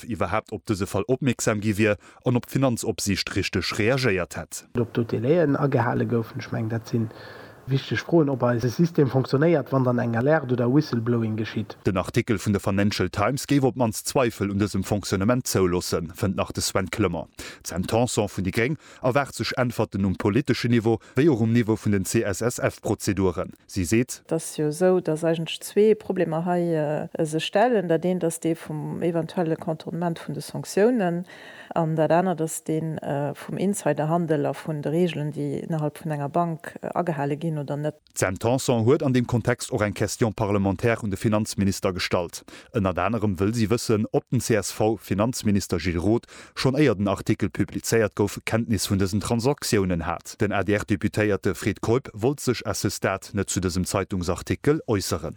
iwwerhaapt op dëse Fall opmierksam gi wier an ob d'Finanzopsiicht richteg reagéiert hätt. Ob do d'Délai'en agehale goufen, ech mengen dat si wichteg Froen, ob eise System fonctionnéiert, wann dann eng Alerte oder Whistleblowing geschitt. Den Artikel vun der Financial Times géif op d'mannst Zweifel un dësem Fonctionnement zouloossen, fënnt nach de Sven Clement. D'Sam Tanson vun déi gréng erwaart sech Äntwerten um politeschen Niveau wéi och um Niveau vun den CSSF-Prozeduren. Si seet. Et ass jo esou, datt eigentlech zwee Problemer hei sech stellen. Dat eent ass dee vum eventuelle Contournement vun de Sanktiounen an dat anert ass dee vum Insiderhandel a vun de Reegelen, déi ënnerhalb vun enger Bank agehale ginn oder net. D'Sam Tanson huet an deem Kontext och eng Question parlementaire un de Finanzminister gestallt. Ënnert anerem wëll si wëssen, ob den CSV-Finanzminister Gilles Roth schonn éier den Artikel publizéiert gouf, Kenntnis vun dësen Transaktiounen hat. Den ADR-Deputéierte Fred Keup wollt sech à ce stade net zu dësem Zeitungsartikel äusseren.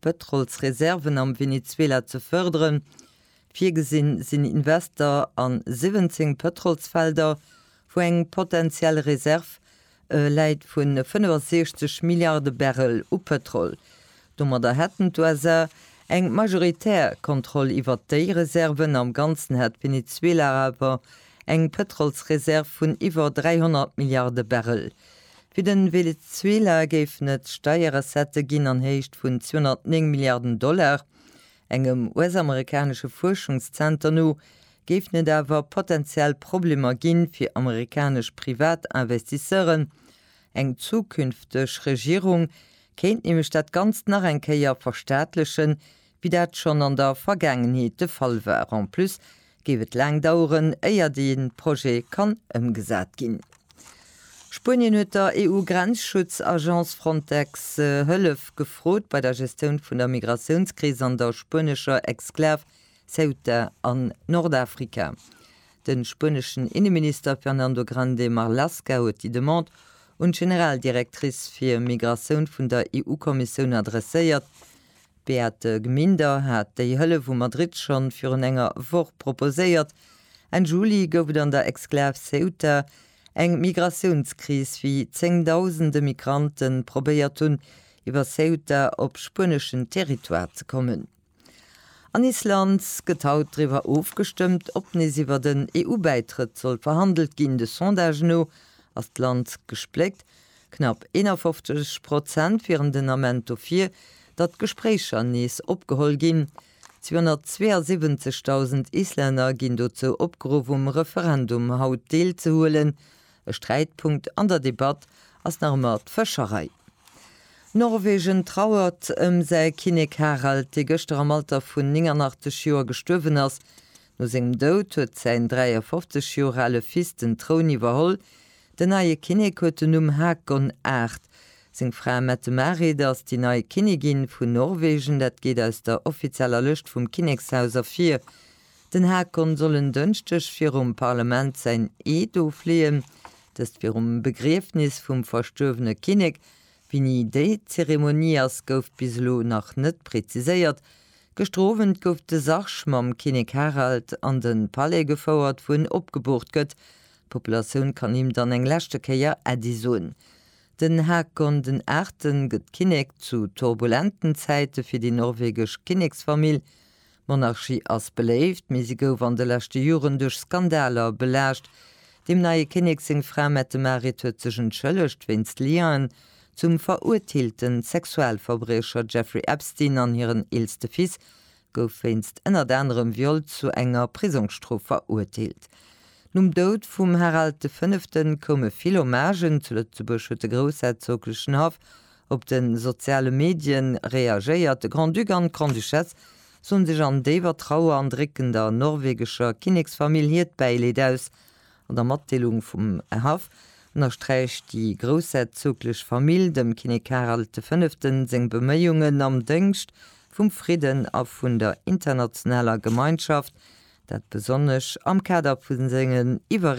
Pëtrolsreserven am Venezuela ze fërderen. Virgesinn sinn Invester a 17 Pëtrolsfelder, wou eng potentiell Reserv läit vu 65 Milliarde Barrel u Pëtrol. Domadder hätten d'USA eng majoritär Kontroll iwwert déi Reserven. Am Ganzen hätt Venezuela awer eng Pëtrolsreserv vun iwwer 300 Milliarde Barrel. Fir de Venezuela géifen et Steierrecettë ginn an Héicht vun 209 Milliarden Dollar. Engem US-amerikanesche Fuerschungszenter no géifen et awer potenziell Problemer ginn, fir amerikanesch Privatinvestisseuren. Eng zukünfteg Regierung kéint nämlech dat Ganzt nach eng Kéier verstaatlechen, wéi dat schonn an der Vergaangenheet de Fall war. En plus géif et laang daueren, éier dee Projet kann ëmgesat ginn. Spuenien huet der EU-Grenzschutz-Agence Frontex Hëllef gefrot bei der Gestioun vun der Migratiounskris an der spuenescher Exklav Ceuta an Nordafrika. De spueneschen Inneminister Fernando Grande Marlaska huet déi Demande un d'Generaldirectrice fir Migratioun vun der EU-Kommissioun adresséiert, D'Beate Gminder hat déi Hëllef u Madrid schonn virun enger Woch proposéiert. Enn Juli gouf et an der Exklav Ceuta eng Migratiounskris, wéi zéngdausende Migrante probéiert hunn, iwwer Ceuta op spueneschen Territoire ze kommen. An Island gëtt haut driwwer ofgestëmmt, ob nees iwwer den EU-Bäitrëtt soll verhandelt ginn. De Sondage no ass d'Land gespléckt. Knapp 51 Prozent wieren den Ament dofir, datt d'Gespréicher nees opgeholl ginn. 272.000 Islänner ginn dozou opgeruff um Referendum haut deelzehuelen. E Sträitpunkt an der Debatt ass nach ëmmer d'Fëscherei. Norwegen trauert ëm säi Kinnek Harald, dee gëschter am Alter vun 89 Joer gestuerwen ass. No sengem Doud huet säin 53 Joer ale Fils den Troun iwwerholl. Den neie Kinnek huet den Numm Haakon Aart. Seng Fra Mette-Marit ass déi nei Kinnigin vun Norwegen, dat geet aus der offizieller Lëscht vum Kinnekshaus ervir. Den Haakon soll en Dënschdeg virum Parlament säin Eed ofleeën, dëst virum Begriefnis vum verstuerwene Kinnek. Wéini déi Zeremonie ass, gouf bis elo nach net preziséiert. Gëschter Owend gouf de Sarg mam Kinnek Harald an de Palais gefouert, wou en opgeboort gëtt. D'Populatioun kann him dann eng leschte Kéier Äddi soen. Den Haakon den Aachten gëtt Kinnek zu turbulenten Zäite fir déi norwegesch Kinneksfamill. D'Monarchie ass beléift, mee si gouf an de leschte Joren duerch Skandaler belaascht. Dem neie Kinnek seng Fra Mette-Marit huet sech entschëllegt wéinst Liaisen zum verurteelten Sexualverbriecher Jeffrey Epstein an hiren eelste Fils gouf wéinst ënnert anerem Viol zu enger Prisongsstrof verurteelt. Nom Doud vum Harald de Fënneften koume vill Hommagen. Zu Lëtzebuerg huet de groussherzoglechen Haff op de soziale Medien reagéiert. De Grand-Duc an d'Grande-Duchesse soen sech an déiwer Trauer an drécken der norwegescher Kinneksfamill hiert Bäileed aus An der Matdeelung vum Haff ënnersträicht déi groussherzoglech Famill dem Kinnek Karel de Fënneften seng Beméiungen am Dëngscht vum Fridden a vun der internationaler Gemeinschaft, dat besonnesch am Kader vu sengen iwwer